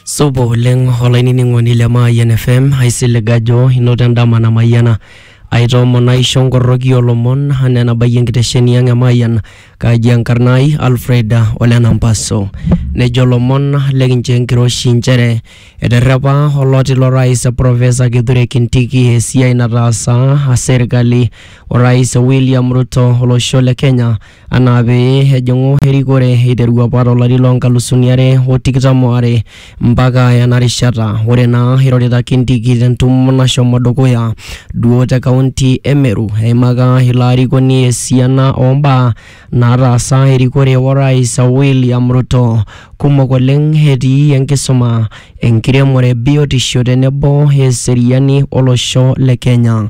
Supa oleng olainining'oni le Mayian FM, aisilig ajo inoto endama namayiana. Aitoomon aisho nkorroki olomon anaa enabayie enkitesheni ang e Mayian. Kaji enkarna ai Alfred Ole Nampaso. Nejo lomon lekinchoo enkiroshi nchere eterrepa oloti lo rais Professor Kithure Kindiki esiai nataasa serkali o rais William Ruto olosho le Kenya anaa pee ejing'u erikore eiteru apa to lari loo nkalusuni are o tikitam o are mpaka ena rishata. Ore naa eirorita Kindiki te ntumo nashomo dukuya duo te kaunti e Meru, eimaka ilo arikoni esiana oo mbaa naataasa erikore o rais William Ruto. Kumok oleng etii enkisuma, enkiremore, biotisho tenebo eseriani o losho le Kenya.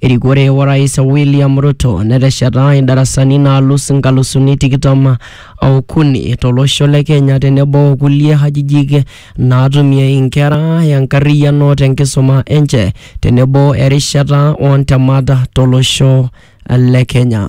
Erikore Orais William Ruto netesheta indarasani naalus inkalusuni tikitam okuni tolosho le Kenya tenebo okulie hajijik naatumie inkera enkarriyiano tenkisuma enche tenebo erishata oontemat tolosho le Kenya.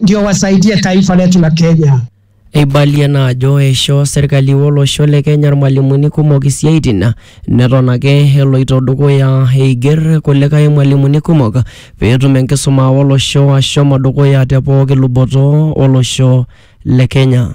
ndio wasaidie taifa letu la Kenya. Eibalie naa ajo eishoo serkali olosho le Kenya irmalimuni kumok isiaitin neton ake eloito dukuya eiger kulikae mwalimuni kumok peetum enkisuma olosho ashomo dukuya te pooki luboto olosho le Kenya.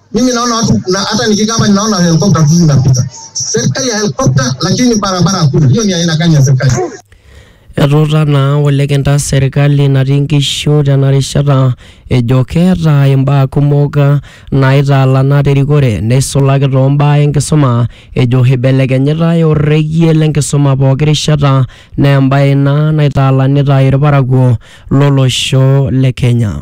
Mimi naona watu na hata nikikaa hapa ninaona helikopta tu zinapita. Serikali ya helikopta, lakini barabara hakuna. Hiyo ni aina gani ya serikali? Etuuta naa olekenta serkali natii nkishu tena rishata ejo keeta imbaa kumok naitaalana terikore neisulaki too mbaa enkisuma ejo eibelekenyitai orrekie lenkisuma pooki rishata naa embae ina naitaalanita irparakuo lolosho le Kenya.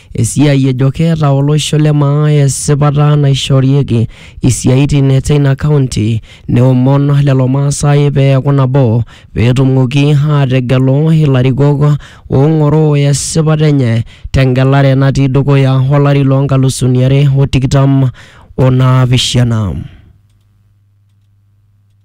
Esiai ejo keeta olosho le maa esipata naishoorieki isiaitin teina kaunti neomon lelo Maasai pee eaku nabo pee etumoki aategelu ilarikok oong'oroo esipata enye te ngelare natii dukuya olari loo nkalusuni are o tikitam o naapishana.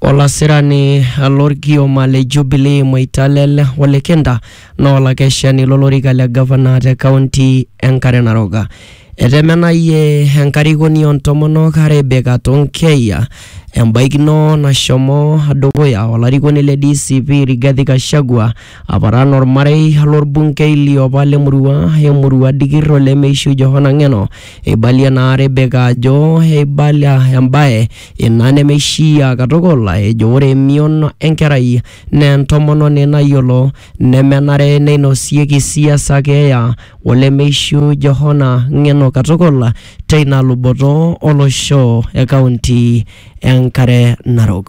Olasirani lolkioma le Jubilee Moitalel Ole Kenta naa olakeshani lolorika le gavana te kaunti e Nkare Narok. Etemenayie enkarikoni oo ntomonok Rebecca Tonkei embaikino nashomo dukuya o larikoni le DCP Rigathi Gachagua aparan olmarei lo lbunkei liopa le murua e murua dikir o lemeishu Johana Ng'eno. Eibalie naa Rebecca ajo eibalia embae Ina nemeishiaa katukul ejo ore emion enkerai naa entomononi nayiolo nemenare neinosieki siasa keeya olemeishiu Johana ng'eno katukul teina luboto olosho e kaunti e Nkare Narok.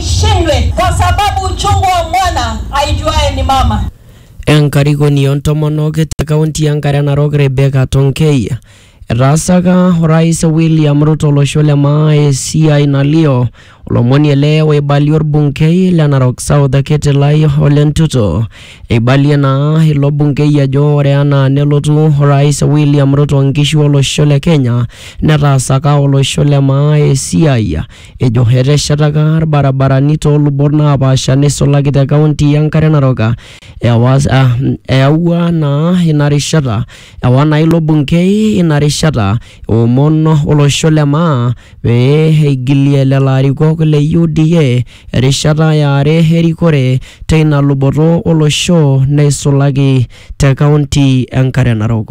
shindwe kwa sababu uchungu wa mwana aijuae ni mama. Enkarikoni oontomonok te kaunti e Nkare Narok Rebecca Tonkei etaasaka orais William Ruto olosho le maa esiai nalio olomoni ele oibalie orbungei le Narok South Ketilai Ole Ntutu. Eibalie naa ilo bungei ajo ore anaa nelotu orais William Ruto nkishu olosho le Kenya netaasaka olosho le maa esiai Ejo eteshetaka ilbarabarani too lubot naapaasha neisulaki te kaunti e Nkare Narok. Ewa, eyaua naa ina rishata ewa naa ilo bunkei ina rishata eomon olosho le maa pee eigilie lelo arikok le UDA erishata e are erikore teina luboto olosho neisulaki te kaunti e Nkare Narok.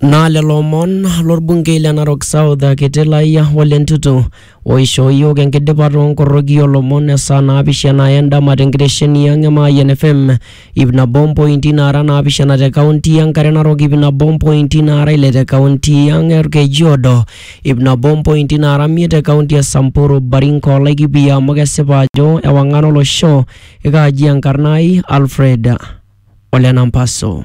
Naa lelo omon lorbungei le Narok South kiti lai Ole Ntutu oishoo iyiook enkidipa too nkoroki oo lomon e saa naapishana e ndama te nkitesheni ang e Mayian FM ip nabo mpointi naara naapishana te kaunti e Nkare Narok, ip nabo mpointi naara ile te kaunti ang e Olkejuodo, ip nabo mpointi naara miet te kaunti e Samburu, Baringo o Laikipia amu kesipa ajo ewang'an olosho. Ekaaji enkarna ai Alfred Ole Nampaso.